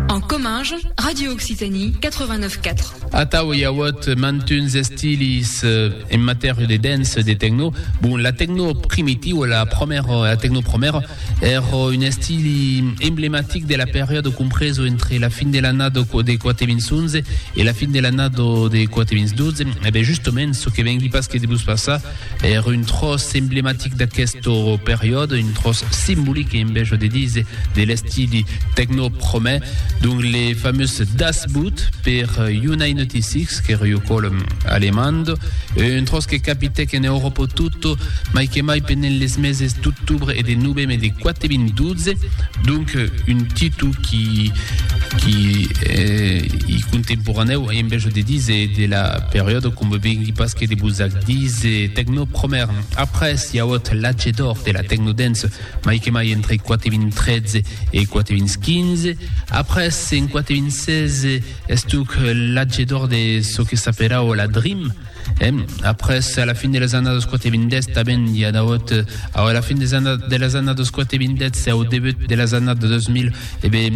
En Comminges, Radio Occitanie 89 4. Atau i auèt mantuns estilis en matèria de dance e de techno. Bon, la techno primitiva, la promèra, la techno promèra, Ère un estili emblematic de la periòde compreso entre la fin de l'annada de 411 e la fin de l'annada de 412. E ben justement, çò que vengui pas que de vos passar, ère un tròç emblematic d'aquesta periòde, un tròç simbolic, en bèja de díser, de l'estili tecno-promè, donc le famós Das Boot per J9TX, qu'ère ua còla alemanda, un tròç que capitèc en Euròpa tota, mai que mai pendent les meses d'octobre e de noveme de 4.012, donc un titu qui qui i contemporaneu en vèja de dise de la periòda com vengui pas que de vos ac dise tecno promèr après si auot l'atge d'or de la tecno dance mai que mai entre 4.013 e 4.015 après en 4.016 estuc l'atge d'or de çò que s'aperau la dream Après, a la fin de las annadas 420, tanben i a dauot, au a la fin des anna, de las annadas 420 e au debut de las annadas 2000, e be,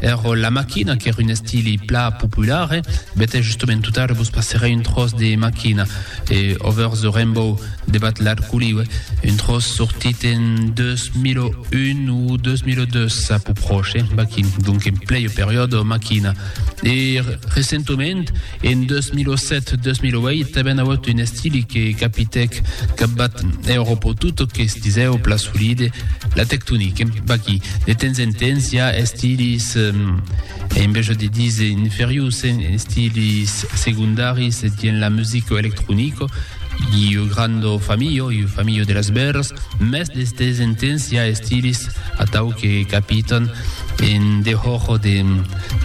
ero la maquina, qu'ère un estili pla popular, e bete justament tot ara vos passerè un tros de maquina, e Over the Rainbow de Bat Larculi, ue, un tros sortit en 2001 ou 2002, a pus proche, baquin, donc en plei o periodo maquina. E recentement, En 2007-2008 avèn auut un estili que capitèc capbat Euròpo tot o que stisèu pla solide la tectonique. Vaqui, de temps en temps, i a estilis, eh, en veja de dise inferius, estilis secondaris dien la musica electronica, Iu grando familho, iu familho de las bèrras, mès d'estes entens i a estilis atau que capitan en dehòr de,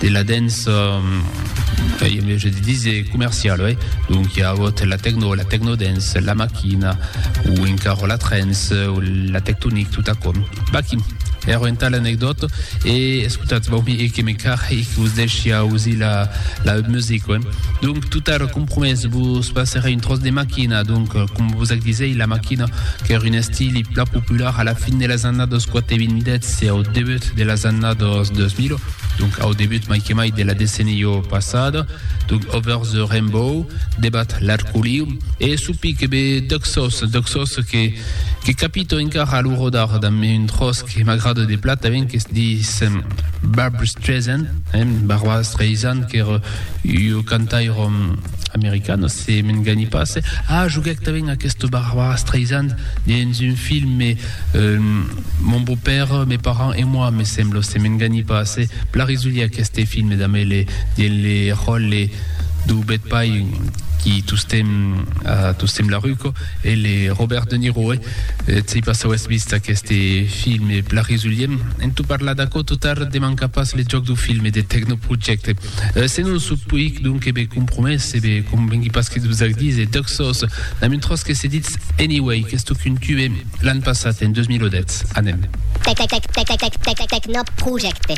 de la dens, eh, i a mès de dise comercial, oi? Donc i a agut la tecno, la tecnodens, la maquina, o encara la trens, o la tectonic, tot aquò. Vaqui! Ero entà l'anecdòta e escotatz, vau mi e que me carre e que vos deishia ausir la, la musica, oi? Donc, Tot ara compromés, vos passerè un tròç de maquina, donc, com vos ac disèi, la maquina, qu'ère un estili plan popular a la fin de las annadas 420 e au debut de las annadas 2000, donc au debut mai que mai de la decennia passada, donc Over the Rainbow, Debat l'Arcoliu, e su pic be Duxos, Duxos que que capito encara a lo rodar damb un tròç que m'agrada de platament, qu'es dis Barbra Streisand, eh, Barbra Streisand, qu'ère Ua cantairòm americana, se m'engani pas. Ah, joguèc tanben aquesta Barbara Streisand dens un film, me, mon beau-père, mes parents et moi, me sembla, se m'engani pas. Plan risolier aqueste film damb le, dens le ròle dau bèth pair qui tostemp, tostemp la ruco, e le Robert De Niro. Eth sei pas auetz vist aqueste filme, Blaris Ulliem, en tot parlar d'aquò tot ar de mancar pas le jòc dau filme de Tecnoprojecte. Se non sò puic, donc e be compromés, e be convengui pas que dus'ac dise, dòc sòs, damb un tròç que se ditz Anyway, qu'es toc un tube, l'an passat, en 2010. Anem. Tecnoprojecte.